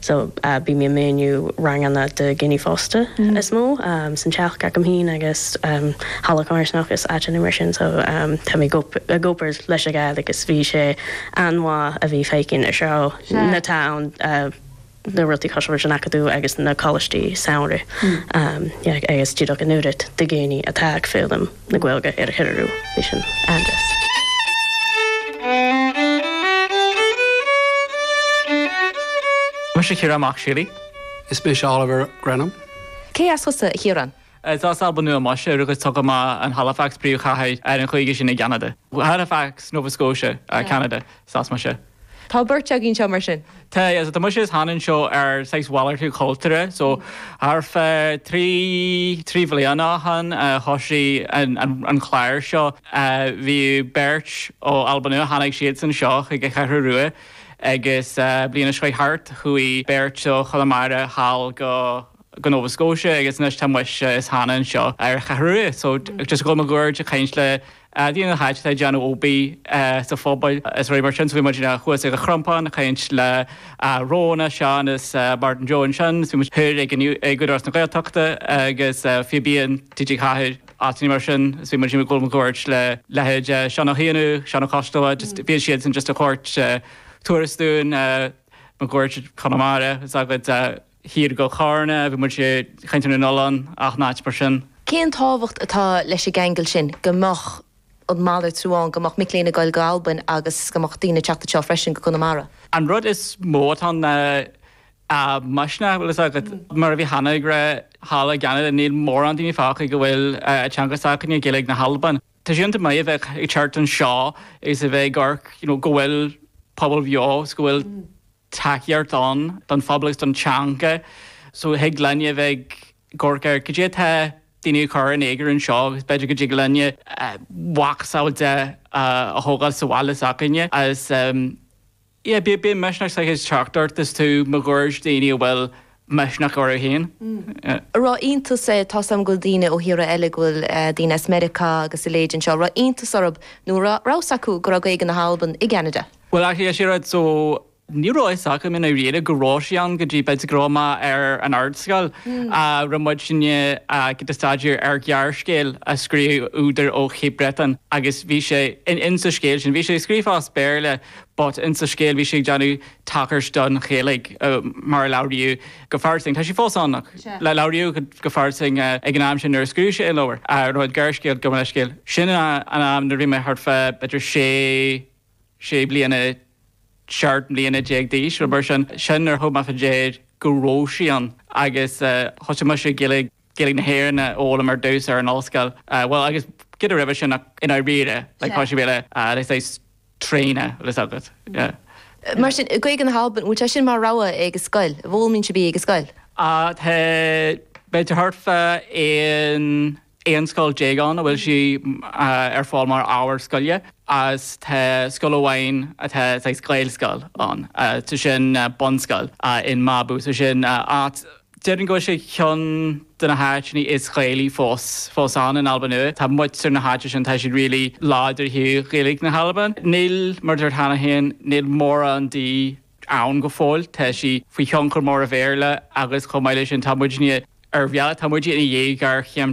So bím ag múineadh ranganna do dhaoine fásta is mó san teach agam fhéin agus halla comharsanacht is áiteanna mar sin so tá mé ag obair leis a fháil agus bhí sé an-mhaith a bheith feichinn anseo na tá ann na rudaí cosúil leis an acadamh agus na coláistí samhraidh yeah agus díreach an oiread de dhaoine atá ag foghlaim. na Gaeilge ar a threorú, bhí sin an-deas. Mise Ciarán Mac Siúlaí. Is mise Oliver Grenham. Cé as thusa, a Chiarán? Tá as Alba Nua mise, rugadh agus tógadh mé in Halifax, príomhchathair ar an chúige sin i gCeanada. Halifax, Nova Scotia, Ceanada, is as mise. Tá beirt agaibh anseo mar sin. Tá, tá mise is Hannah anseo ar saghas malartú cultúra so thar feadh trí, trí bhliain ó shin a thoisigh an, an, an clár seo. Bhí beirt ó Alba Nua, tháinig siadsan seo chuig an Cheathrú Rua agus bliain seo chuaigh thart chuaigh beirt ó Chonamara thall go, go Nova Scotia agus anois tá mise is Hannah anseo ar an Cheathrú Rua so just ag gabháil máguaird ag caint le daoine atá, atá ag déanamh obair sa phobal is rudaí mar sin so bhí muid thuas ag an Chrompán ag caint le Róna, Seán is Martin Joe ansin is bhí muid thoir ag an Údarás na Gaeltachta agus Fíbín TG4, áiteanna mar sin is bhí muid ag gabháil máguaird le leithéid Seán Ó hÉanaigh, Seán Ó Coisdealbha just bhí siadsan just ag tabhairt turas dúinn máguaird Chonamara is agad. Thiar go Carna a bhí muid i gCeantar na nOileán, áiteanna mar sin. Cén tábhacht atá leis an gceangal sin go mbeadh an malartú ann, go mbeadh mic léinn ag dul go Albain agus go mbeadh daoine ag teacht anseo freisin go Conamara? An rud is mó atá ann ná an misneach an bhfuil fhios agat. Mar a bhí Hannah ag rá thall i gCeanada níl mórán daoine fágtha go bhfuil an teanga s'againne Gaeilge na hAlban. Tá sé iontach maith a bheith ag teacht anseo agus a bheith ag amharc go bhfuil pobal bheo is go bhfuil tacaíocht ann don phobal agus don teanga so thig linne a bheith ag amharc ar cad é atá daoine ag cur in éagar anseo agus b'fhéidir go dtig linne mhacasamhail de a thógáil sa bhaile s'againne agus yeah bíonn misneach saghas ag teacht ort is tú máguaird daoine a bhfuil misneach orthu féin. Raibh iontas, tá 's a'm go bhfuil daoine ó thíortha eile, go bhfuil eh daoine as Meiriceá agus a leithéid anseo, raibh iontas orthub nó ra, raibh 's acu go raibh Gaeilge na hAlban i gCeanada? Bhuel actually is é rud so ní raibh fhios agam i ndáiríre go raibh sí ann go dtí b'fhéidir go raibh mé ar an ardscoil eh raibh muidinne eh ag staidéar ar ghearrscéal a scríobh údar ó Chape Breton agus bhí sé in sa scéal sin, bhí sé scríofa as Béarla but in sa scéal bhí sé ag déanamh tagairt don Ghaeilge mar a labhraíodh go fairsing. Tá sí fós ann ach labhraíodh go fairsing ag an am sin nuair a scríobh sé an leabhar, a raibh an gearrscéal gabh mo leithscéal. Sin an am nuair a bhí mé thart fá b'fhéidir sé, sé bliana, seacht mbliana déag d'aois, rud mar sin. Sin nuair a thug mé fá dear go raibh sí ann agus thosaigh mise ag déileáil. Gaeilge na hÉireann a d'fhoghlaim ar dtús ar an ollscoil, bhuel agus cinéal roimhe sin ach i ndáiríre, like, tá sibh le saghas tréine agus agat, yeah. Mar sin, Gaeilge na hAlban, an bhfuil sé sin mar rogha ag an scoil, an bhfoghlaimíonn sibh í ag an scoil? Ah, tá, beidh thart fá aon, aon scoil déag ann a bhfuil sí ar fáil mar ábhar scoile agus tá scoil amháin atá saghas Gaelscoil ann, tá sin bunscoil in Mabu, so sin áit, Déarfainn go bhfuil sé ar cheann de na háiteanna is Gaelaí fós ann in Alba Nuadh. Tá muintir na háite sin, tá siad really láidir i nGaeilge na hAlban. Níl, mar a dúirt mé cheana féin, níl mórán di ann go fóill. Tá sí faoi thionchar mór an Bhéarla agus chomh maith leis sin tá muidne ar bhealach, tá muide ina dhiaidh géarchéim